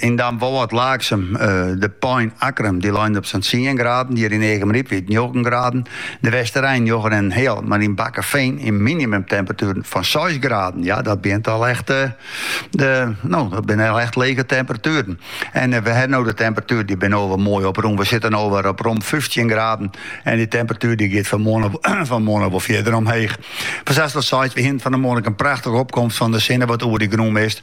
Yn Damwâld, Laaksum, de Pein Akkrum, dy leine op sa'n tsien graden, hjir yn Earnewâld njoggen graden, de Westereen njoggen en in heal, mar yn Bakkeveen in minimumtemperatuer fan seis graden. Ja, dat binne al echt no, dat binne al echt lege temperatueren. En we hawwe no de temperatueren, dy binne al wer moai oprûn. We sitte al wol op rom 15 graden en de temperatuer dy giet fan 'e moarn wol fierder omheech. Foar seis ta seis, we hiene fan 'e moarn in prachtige opkomst fan de sinne wat oer dy grûnmist.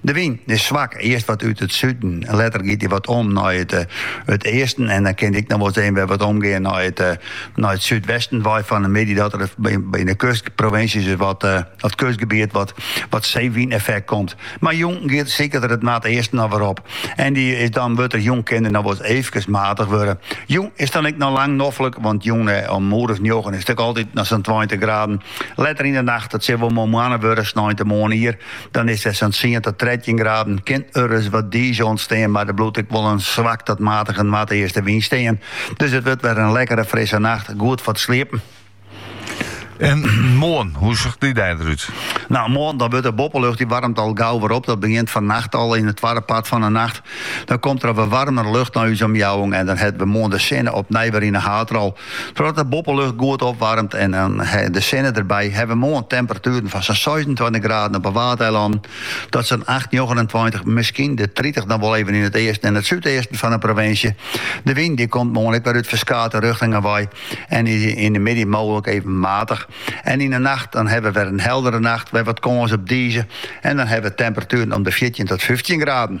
De wyn is swak, earst wat út it suden, letter giet dy wat om nei it easten en dan kin dy ek noch wolris wer wat omgean nei it súdwesten want fan 'e middei dat der yn 'e kustprovinsjes is wat dat kustgebiet wat seewyneffekt komt. Mar jûn giet siket er it noardeasten noch wer op en dy is dan wurdt er jûn kin der noch wolris eefkes maatich wurde. Jûn is dan ek noch lang noflik, want jûn om in oer as njoggen is it ek altyd noch sa'n tweintich graden. Letter yn 'e nacht, it sil wol moarn moanne wurde, sneintemoarn ier, Dan is der sa'n tsien ta trettjin graden. Kin ris wat diis ûntstean, mar der bliuwt ek wol in swak ta matige noardeastewyn stean. Dus it wurdt wer in lekkere frisse nacht, goed foar it sliepen. En moarn, hoe sjocht dy dei derút? No, moarn dan wurdt de boppelucht dy waarmet al gau wer op. Dat begint fannacht al yn it twadde part fan de nacht. Dan komt der wer waarmer lucht nei ús omjouwing en dan hawwe we moarn de sinne opnij wer yn de haadrol. Trochdat de boppelucht goed opwaarmet en dan de sinne derby, hawwe we moarn temperatueren fan sa'n seisentweintich graden op 'e Waadeilannen ta sa'n acht, njoggenentweintich, miskien de tritich dan wol even yn it easten en it súdeasten fan 'e provinsje. De wyn dy komt moarn ek wer út ferskate rjochtingen wei en is yn de middei mooglik even matich. En yn 'e nacht dan hawwe we wer in heldere nacht, wer wat kâns op dize en dan hawwe we temperatueren om de fjirtjin tot fyftjin graden.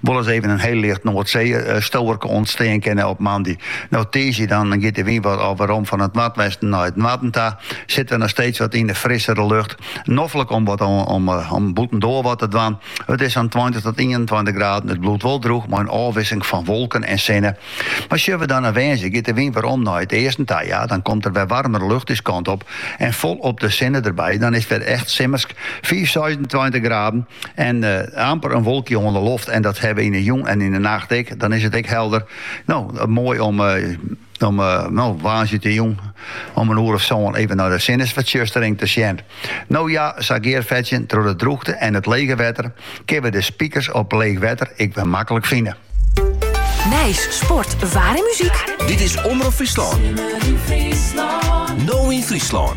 wol ris even in heel licht Noardseesteurinkje ûntstean kinne op moandei. No tiisdei dan giet de wyn wat werom fan it noardwesten nei it noarden ta, sitte we noch steeds wat yn de frissere lucht. Noflik om wat om bûtendoar wat te dwaan. It is sa'n tweintich tot ienentweintich graden, it bliuwt wol drûch mei in ôfwisseling fan wolken en sinne. Mar sjogge we dan nei woansdei, giet de wyn werom nei it easten ta, ja, dan komt der wer waarmere lucht ús kant op en folop de sinne derby, dan is it wer echt simmersk, fiif, seisentweintich graden en amper in wolkje oan de loft en dat hawwe we yn de jûn en yn de nacht ek, dan is it ek helder. No, moai om no woansdeitejûn om in oer of sân even nei de sinnesfertsjustering te sjen. No ja, sa gearfetsjend troch de drûchte en it lege wetter kinne we de spikers op leech wetter ek wer maklik fine. Nijs, sport, waar en muzyk. Dit is Omrop Fryslân. Simmer yn Fryslân. No yn Fryslân.